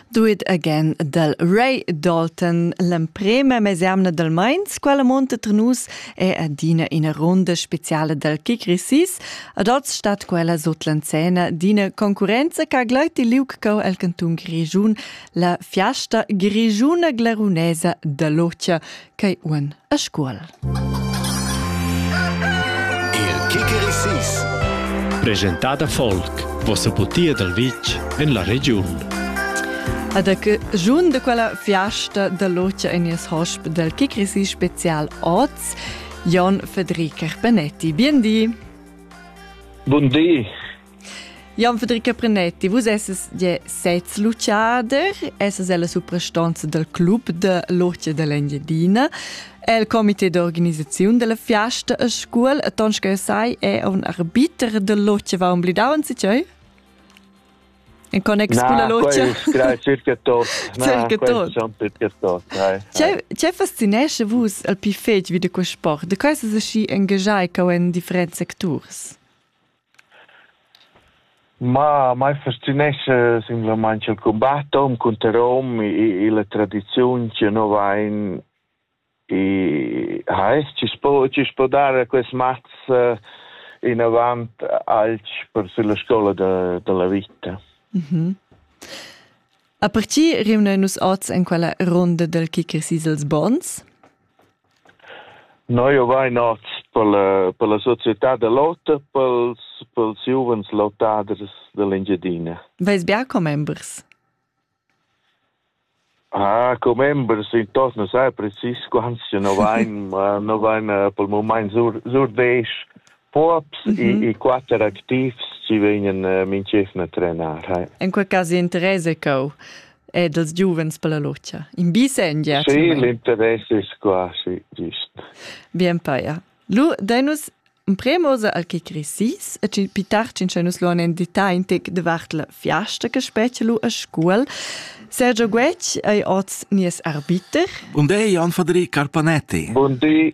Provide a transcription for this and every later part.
Do it again dal Ray Dalton, l'emprema mesemna dal Mainz, quella monta tra nus è adina ina ronda speciala dal kick resis. Ad oz stat quella sut l'anzena d'ina concurrenza che ha gleit il liug cau el cantun Grigiun, la fiasta grigiuna glarunesa da l'Otia, Quei uon a Scuol. Il Kikerisis Presentada folk, vossa putia dal vitg en la regiun. Ed a che giun de quella fiasta da locia in nies hosp del Kikrisi special oz, Jon Federica Benetti. Bien di. Buon di. Jan Federica Prenetti, vus esses je sez luciader, esses ella suprastanza del club de l'Orcia dell'Engiadina. El comité d'organisazione della fiesta a scuol, e tons che sai è un arbiter dell'Orcia va umblidau in si cioi? In connex con la logia? Nein, circa tot. circa tot. Circa tot. C'è fascinesce vus al più fetg vi di quest sport? De cosa si engaggiai che in different sectors? Ma mai fascinescha simplamaing il cumbat hom cunter hom illa tradiziun chi nu vain i ha es chi s'po chi s'po dar quist mats inavant alch per sülla scoula da da la vita. A partir rimnain nus hoz in quella runda dal kicker Sisels Bons. Noi ovain hoz per la società da l'ota pels pels giuvens lautaders da l'Engiadina. Vais be a commembers? Ah, commembers intorno sai precis quants no vain no vain pel mumaint sur sur desch Pops mm -hmm. e, e quatter activs ci vegnan uh, minchefna trenar. Hai. In quel cas interesa cau ed els giuvens per la lotscha. In bisengia. Sì, l'interess è quasi gist. Bien paia. Lu, dai nus un premosa al che cresis e ci pitarcin che nus luan en detagl tic de vart la fiasta che specie lu a scuol. Sergio Guec ei oz nies arbiter. Buon day, Jan Federic Carpanetti. Buon day.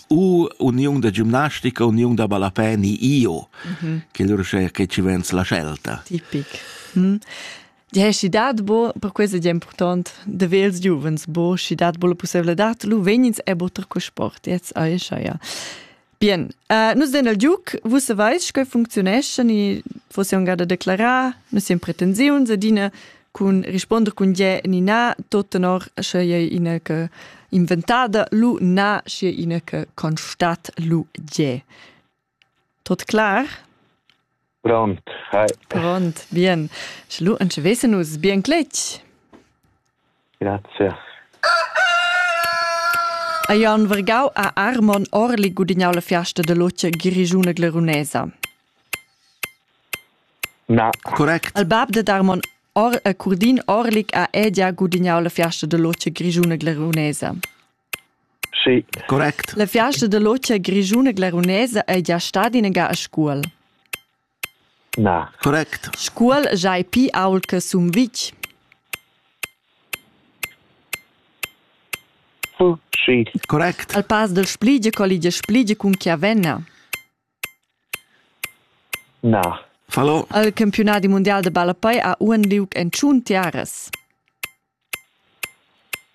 U uniun da gimnastica, uniun da ballapè ni io, mm -hmm. che lur sche che ci vens la scelta. Tipic. Mm. Di hai dat bo, per questo è important, de vels giuvens, bo, si dat bo la possibilità, lu venins e botter co sport, jetzt aisha, ja. Bien, uh, nus den al giuc, vus savais che funzionesce, ni fosse un garda declarar, nus siamo pretensiuns, adina cun risponder cun gie ni na, tot tenor sche ei ina che inventada lu na, sche ina che constat lu gie. Tot klar? Pronto. Hi. Pronto, bien. Schlu, en vesen us bien cletg. Grazie. A Jan Vergau a Armon Orli gudignau la fiasta de loce Grigiune Glerunesa. Correct. Il bab dad Armon or- e Curdin Orlik ha edia gudignau la fiasta da lotscha grischuna glarunesa. Sì. Correct. La fiasta da lotscha grischuna glarunesa ei gia stada inagà a Scuol. Na. Correct. Scuol giai pi ault che Sumvitg. Sì. Correct. Al pass del Spligie colligia Spligie cun Chiavenna. Na. Fallo. El campiunadi mundial da ballapei ha uonn liug en tschun tiaras.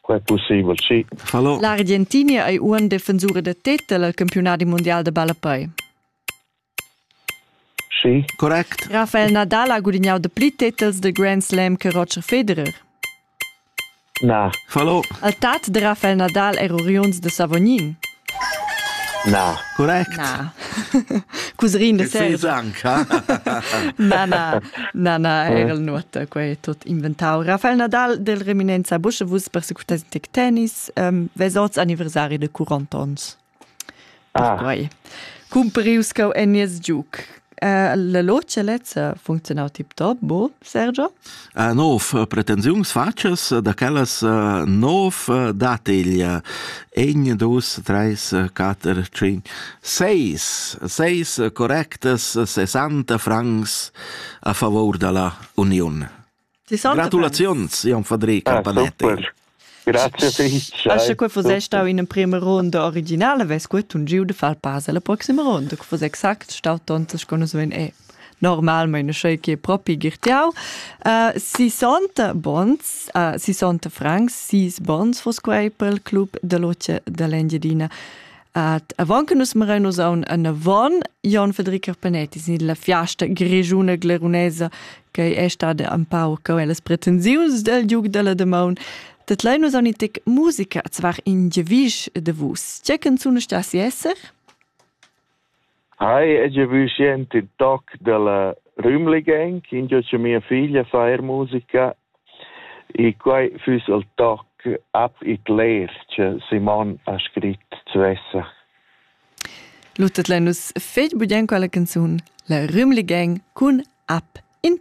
Quei pusseivel, sì. Fallo. L'Argentinia ei uonn defensura da tetel al campiunadi mundial da ballapei. Sì. Correct. Rafael Nadal ha gudignau dapli tetels dil Grand Slam che Roger Federer. Na. Fallo. El tat da Rafael Nadal er uriuns da Savognin? Na. Correct. Na. Cuserin da Serra. Na, na, na, na, era il nuota, quei tot inventau. Rafael Nadal del Reminenza Busche, vus persecutas tic tennis, um, ves oz anniversari de 40 ons. Ah. Quai. Cumparius cau en nies giuc. Uh, la logia lezza funzionau tip top, bo, Sergio? Uh, nov pretensiuns facas, da quellas uh, nov uh, dateglia en dus, treis, uh, quater, cinc, seis, seis correctas, sessanta francs a favor dalla union. Gratulaziuns, Jon Fadric ah, Campanetti. Grazie fich. Asche que fos stau in prima ronda originale, ves que tun giu de far pass alla proxima ronda, que fos exact stau tontas con es e normalmente sei che propi girtiau. Uh, 60 bons, uh, 60 francs, 6 bons fos quei pel club de loce dell'Engiadina. Ad avant che nus mirain nus aun en avon Jon Federico Panetti sin la fiasta grigiuna glerunesa che è stada un pau co las pretensiuns del Duc della Demaun dat lei nus aun tic musica zvar in gevisch de vus. Tge canzun sta si esser? Hai hagia vü sient ün toc da la Rümli Gang, ingio cha mia figlia fa eir musica e quai füss il toc Ab it leer cha Simon ha scrit svessa. Luttet lein nus fetg bugien quella canzun, la Rümli Gang cun Ab in